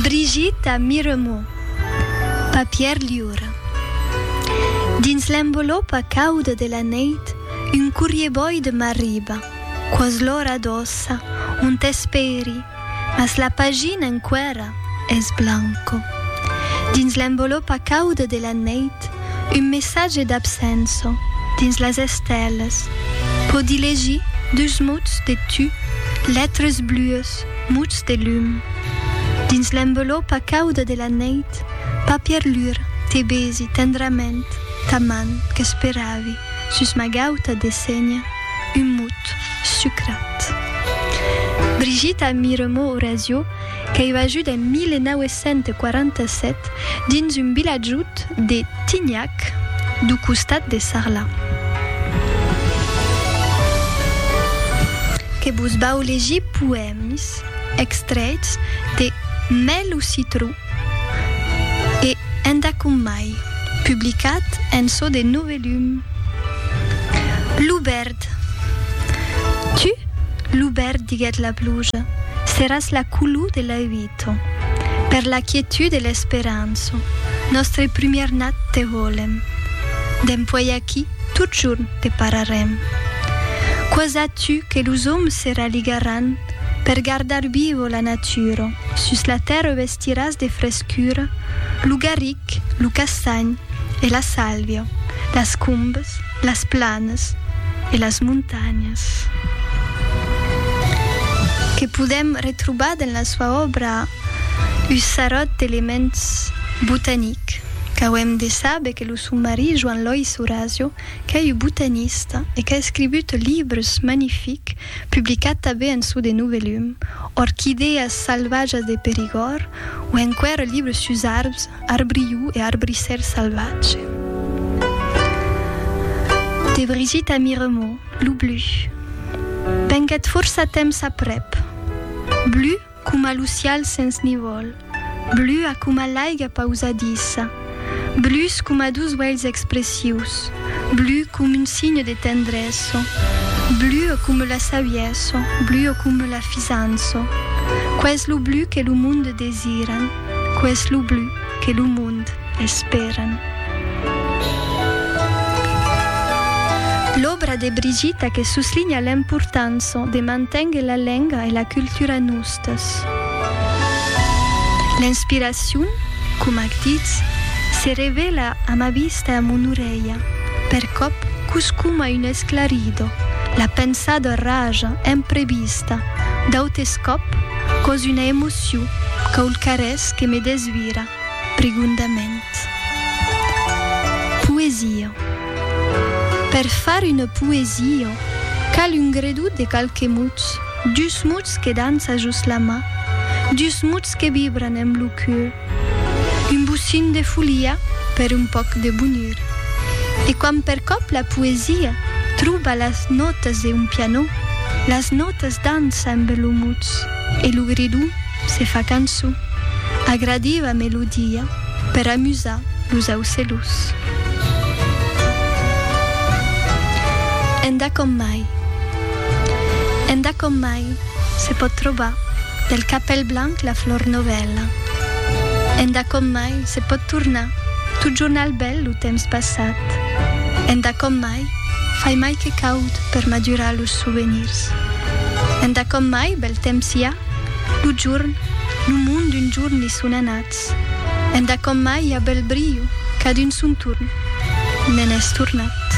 Brigitte a Miremont, papièr liur. Dins l'envolopa cauda de la neit, un corrier boide m'arriba, quò's l'ora doça, on t'espèri, mas la pagina enquèra es blanco. Dins l'envolopa cauda de la neit, un messatge d'absenço, dins las estèlas, pòdi legir dus mots de tu, letres blues, muts, muts de lum. Dins l'envelopa cauda de la neit, papièr lur, te besi tendrament ta man qu'esperavi sus ma gauta de senha, un mut sucrat. Brigitta Miremaux-Orazio, qu'aiva ajut en 1947, dins un vilatjut de Tignac, du costat de Sarlat. Que vos vau legir poèmis extrèits de Mai lo citró e Enda com mai, publicat en çò de Novelum. Lo verd. Tu, lo verd, diguèt la pluja, seràs la color de la uida. Nato, per la quietud e l'esperança, nòstre prumièr nat te volèm. Dempuèi aquí, totjorn te pararèm. Quò sa tu que los òmes se raligaràn per gardar viva la natura, sus la tèrra vestiràs de frescura lo garric, lo castanh e la sàlvia, las combes, las planas e las montanhas que podèm retrobar dins la soa òbra un sarròt d'elements botanics qu'auem de saber que lo son marit Joan Lois Horacio qu'es un botanista e qu'a escrigut libres magnifics publicats tanben en çò de Novelum, Orquídeas salvatges de Périgord o enqüèra libres sus arbres. Arbriu e arbrissèr salvatge. De Brigitta Miremò, Lo blu. Venguèt fòrça temps aprèp. Blu coma lo cial sens nivòl. Blua coma l'aiga pausadissa. Blus coma dus uèlhs expressius. Blu com un signe de tendrèsso. Blua com la savièsso. Blua com la fisanço. Qu'es lo blu que lo monde desiran. Qué es lo blu que lo mond esperan? L'òbra de Brigita que suslinha l'importança de manténguer la lenga e la cultura nustas. L'inspiracion, coma ac ditz, se revela a ma vista e a mon orelha, percòp qu'us coma un esclarido, la pensada raja, imprevista, d'autes còp, còs una emocion, Siu quaucarés que me desvira prigondament. Poesia Per far una poesia cal un gredut de qualques mots, dus mots que dança jos la mà, dus mots que vibran amb lo cur, un bocin de folia per un pauc de bonur. E quand percòp la poesia tròba las nòtas d'un pianò, las nòtas dança amb lo mots. E lo gridon se fa cançon. Agradiva melodia per amusar los aucelhos. Endà com mai. Endà com mai se pòt trobar del capèl blanc la flor novèla. Endà com mai se pòt tornar totjorn al bèl lo temps passat. Endà com mai. Mai, fai mai que caud per madurar los sovenirs. Enda com mai bèl temps i a, lo jorn, lo mond d'un jorn i son anats. Enda com mai i a bèl brilho, cadun son torn, ne'n es tornat.